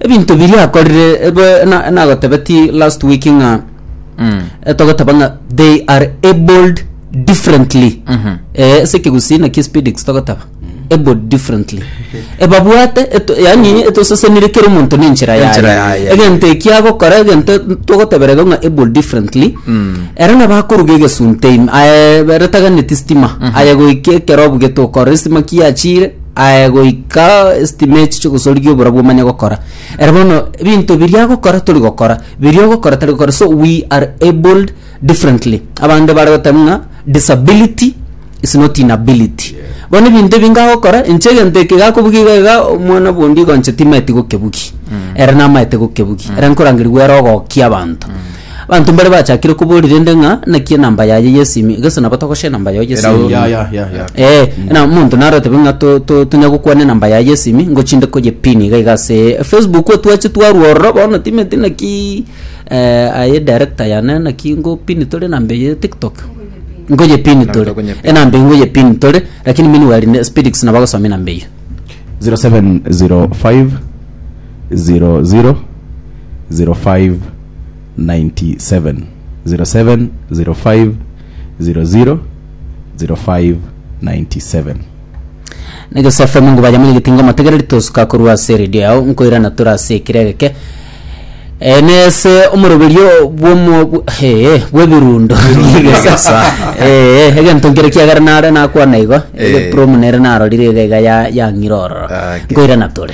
Ebinto biria akorire ebe na nagotebeti last week ng'a eh, togoteba ng'a they are abled differently eh ase ekegusii naki speedix togoteba abled differently ebabwate eto yaani etosesenire kera omonto ne enchera yaye Enchera yaye. egento eki agokora egento togotebera iga ng'a abled differently ere nabo akoruga egesunte ime aye ere taganeti stima aye goika ekero obugete okora estima ki yachire aye goika estimate chogosorigia obora bwomanya gokora ere bono ebinto biria agokora tori gokora biria ogokora tari gokora so we are abled differently abande bare goteba ng'a disability is not inability bono ebinto ebi ngagokora inche egento eke gakobugia iga iga omwana bwondii igo inche timaeti gokebugia ere namaete gokebugia ere nkorangeria goera ogokia abanto Abanto mbare bachakire koboria rende ng'a naki enamba yaye yesimu iga gose nabo togosha enamba yao yesimu Erao- ya ya ya ya Eh, na omonto naro otebe ng'a to- to- tonya gokwana enamba yaye yesimi ngochinde koye pin iga iga ase facebook otwache twarwa ororo bono timanyeti naki eh, aye director yane naki ngo pin tore enamba eye ya tiktok ngoye pin Enamba tore tokonye pin. enamba eye ngoye pin tore lakini meanwhile ne spedix nabo agosoma enamba eyio 0705 00 05 Negesaku fm nkoba yamo nyegete inga omotegereri tosuka korwa ase eredio yao nkoirana tore ase ekire egeke Eh, nese omoroberio bwomo bw- hee bwebirundo Nyegesasa. Eh, egento nkere kiagera nare nakwana igo Eh. egepromu nere narorire iga iga ya- yang'ira ororo Ah, okay. nkoirana tore